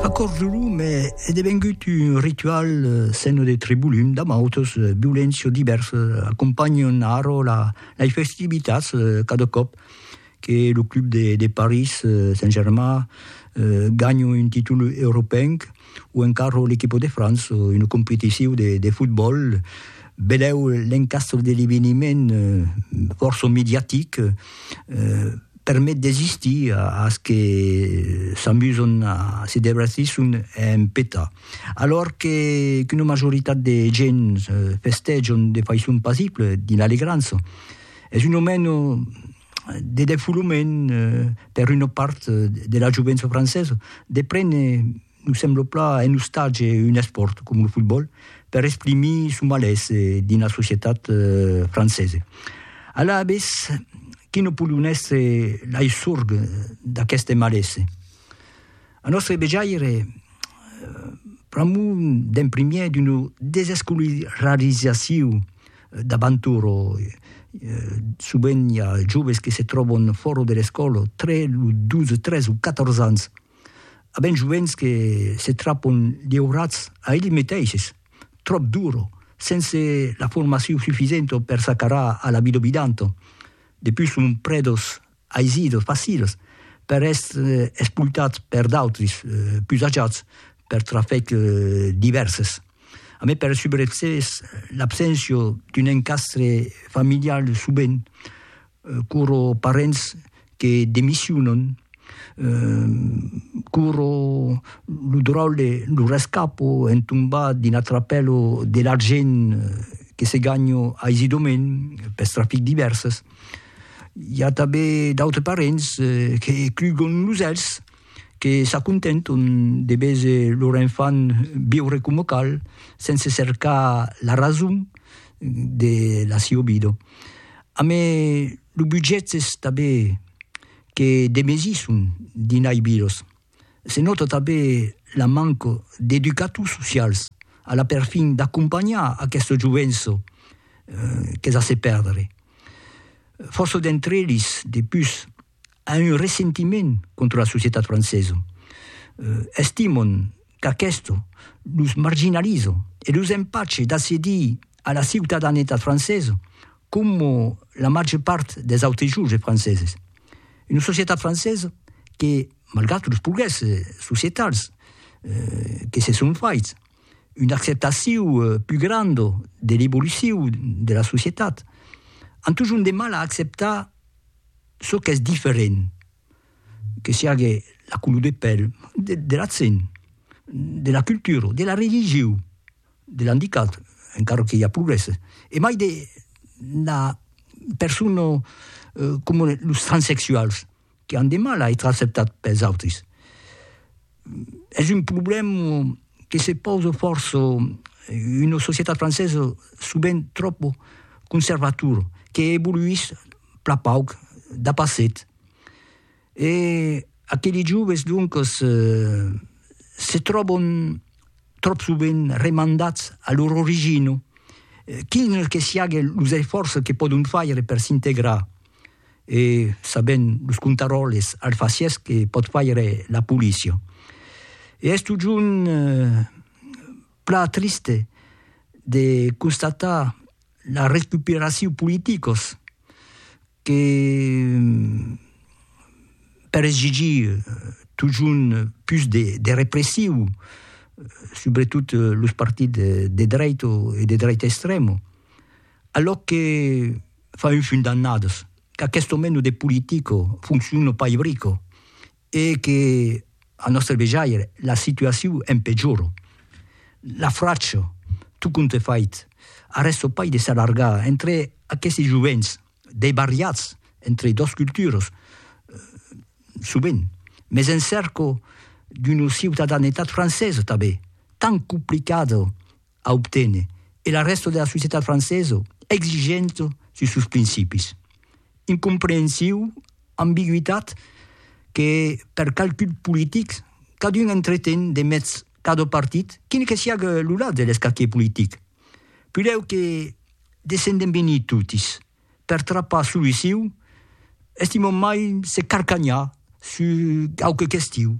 Acorjolum est devengut un ritual seno de Tribulum, damb autos violents çò divèrs, acompanhant arrò lai festivitats cada còp que lo club de París Saint-Germain ganha un títol europenc. o encara l'equipo de França, una competicion de, de fotbòl, belèu l'encastre de l'eveniment fòrça mediatic, eh, permet d'existir a, as que s'amusan a se devertisson en peta. Alòr que, qu'una majoritat de gents festejan de faiçon pasible, dins l'alegrança, es un o meno, de defoulament per una part de la jovença francesa de prene, nos sembla plan, en ostatge un espòrt com lo fotbòl per exprimir son malés dins la societat francesa. Alavetz, quina pòdon èstre lei sorg d'aqueste malés? Al nòstre vejaire, pr'amor d'en primièr d'una desescolarizacion d'abantur, sovent i a joves que se tròban fòra de l'escòla tre los 12, 13 o 14 ans, a ben jovents que se trapan liurats a elli meteisses, tròp dura, sense la formacion sufisenta per s'acarar a la vida vidanta, depús son predos aisidos, faciles, per èstre espoltats per d'autres pus ajats per trafèc divèrses. A mai per subreçes l'abséncia d'un encastre familial sovent quora parents que demissionan, quora lo dròlle, lo rescapo en tombar dins la trapèla de l'argent que se ganha aisidament pes trafics divèrses. I a tanben d'autres parents que clugon los elhs, que s'acontenton de veser lor enfant viure coma cal, sense cercar la rason de la siua vida. A me los butgèths tanben que demesisson dinai vidas. Se nòta tanben la manca d'educators socials a la perfin d'acompanhar aquestos jovents qu'es a se pèrdre. Fòrça d'entre eles, de pus, an un ressentiment contra la societat francesa. Estimon qu'aquesto los marginaliza e los empache d'accedir a la ciutadanetat francesa, coma la màger part des autres joves franceses. Una societat francesa que, malgrat los progrèsses societals que se son faits, una acceptacion pus granda de l'evolucion de la societat, an totjorn de mal a acceptar çò qu'es diferent, que siágue la color de pèl, de l'accent, de la cultura, de la religion. de l'andicat, encara que i a progrès, e mai de la persona comuna, los transsexuals, que an de mal a èstre acceptats pels autris. Es un problèma que se pausa fòrça una societat francesa sovent tròp conservatora, que evoluís plan pauc dapasset. E aqueli joves, doncas, se tròban tròp sovent remandats a lor origina, quin que siague los esfòrces que pòdon faire per s'integrar, e sabent los contaròles alfacièrs que pòt faire la polícia. E es totjorn plan triste de constatar la recuperacion politicas, que per exigir totjorn pus de repressiu subretot los partits de dreit o de dreit extrèma, alò que fa un fum d'annadas, qu'aqueste moment de politica foncciona pas ibrica e que, al nòstre vejaire, la situacion empejora. La fracha, tot compte fait, arrèsta pas de s'allargar entre aqueste jovents debariats entre dos culturas, sovent, mes en cèrca d'una ciutadanetat francesa tanben, tant complicada a obténer e la rèsta de la societat francesa exigenta sus sos principis. Incomprehensiu, ambigüitat que, per calculs politics, cadun entreten de mèths cada partit, quin que siague lo lat de l'escaquier politic. Pudèu que descendem venir totis per trapar soluciu, estimam mai se carcanhar sus quauque question.